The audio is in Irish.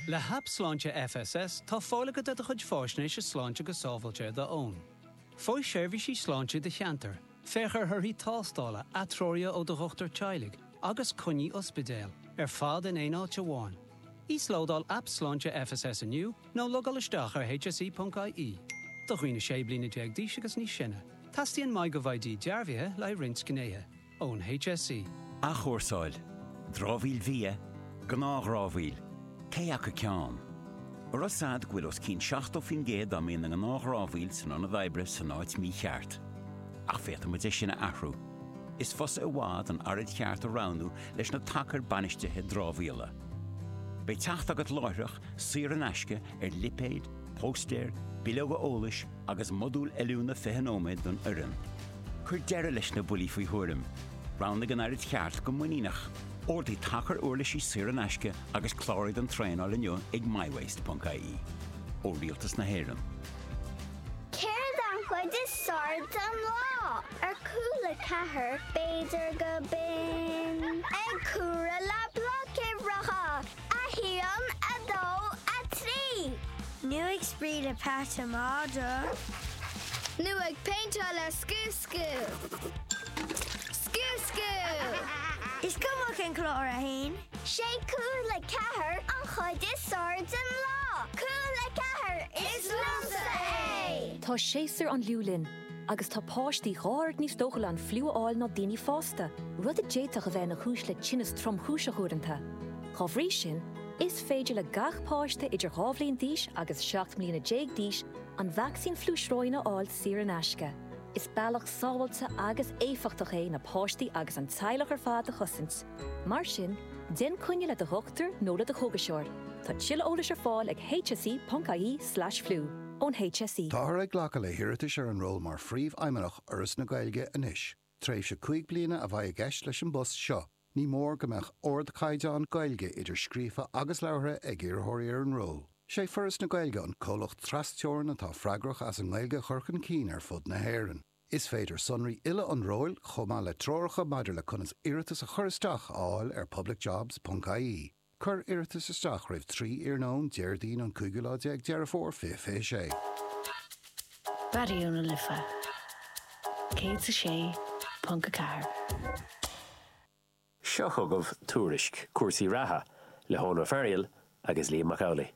Le hAip Sláinte FSS tá fáil agat ar do chuid faisnéise sláinte go sábháilte ar d'fhón. Faigh seirbhísí sláinte i do cheantar, féach ar thorthaí tástála, atreoruithe ó do dhochtúir teaghlaigh agus coinní ospidéil, ar fad in aon áit amháin. Íoslódáil Aip Sláinte FSS inniu nó logáil isteach ar hse.ie. Do dhaoine 16 bliana d'aois agus níos sine, teastaíonn MyGovID dearbhaithe le haghaidh roinnt gnéithe. ón HSE. Athchúrsáil, dramhaíl bhia, gnáthdhramhaíl, cé acu ceann? An raibh a fhios agat go bhfuil os cionn 70% dá mbíonn i ngnáthdhramhaíl san ionad oibre san áit mícheart. Ach féadfaidh muid é sin a athrú. Is fusa i bhfad an araid cheart a roghnú leis na tacair bainistithe dramhaíola. Beidh teacht agat láithreach, saor in aisce, ar lipéid, póstaeir, bileoga eolais, agus modúl oiliúna 20 nóiméad don fhoireann. Cuir deireadh leis na buillí faoi thuairim, roghnaigh an araid cheart go muiníneach, ordaigh tacar uirlisí saor in aisce agus cláraigh don traenáil inniu ag mywaste.ie. Ó Rialtas na hÉireann. Céard é an chuid is fearr den lá? Ar Cúla4, b'fhéidir go binn. Ag comhaireamh le Bloic Uimhreacha. 1, 2, 3. Nó ag spraoi le Patról na Madraí. Nó ag péinteáil le scooscú. Scooscú! Is cuma cén clár a roghnaíonn. Sé Cúla4 an chuid is fearr den lá. Cúla4, is liomsa é! Tá séasúr an fhliú linn. agus tá páistí dhá oiread níos dóchúla an fliú a fháil ná daoine fásta, rud a d'fhéadfadh a bheith ina chúis le tinneas tromchúiseach uaireanta. Dá bhrí sin, is féidir le gach páiste idir dhá bhliain d'aois agus seacht mbliana déag d'aois an vacsaín fliú sróine a fháil saor in aisce. Is bealach sábháilte agus éifeachtach é na páistí agus an teaghlach ar fad a chosaint. Mar sin, déan coinne le do dhochtúir nó le do chógaiseoir. Tá tuilleadh eolais ar fáil ag hse.ie slash flu. Ón HSE. Táthar ag glacadh le hiarratais ar an ról mar Phríomhfheidhmeannach Fhoras na Gaeilge anois. Tréimhse cúig bliana a bheidh i gceist leis an bpost seo. Ní mór go mbeadh ardchaighdeán Gaeilge, idir scríofa agus labhartha, ag iarrthóirí ar an ról. Is é Foras na Gaeilge an comhlacht tras-teorann atá freagrach as an nGaeilge a chur chun cinn ar fud na hÉireann. Is féidir sonraí uile an róil chomh maith le treoracha maidir le conas iarratas a chur isteach a fháil ar publicjobs.ie. Cuir iarratais isteach roimh 3 iarnóin Déardaoin an cúigiú lá déag Deireadh Fómhair 2026. Raidió na Life 106.4. Seo chugaibh tuairisc cúrsaí reatha le hEoghan Ó Fearghaíl agus Liam Mac Amhlaigh.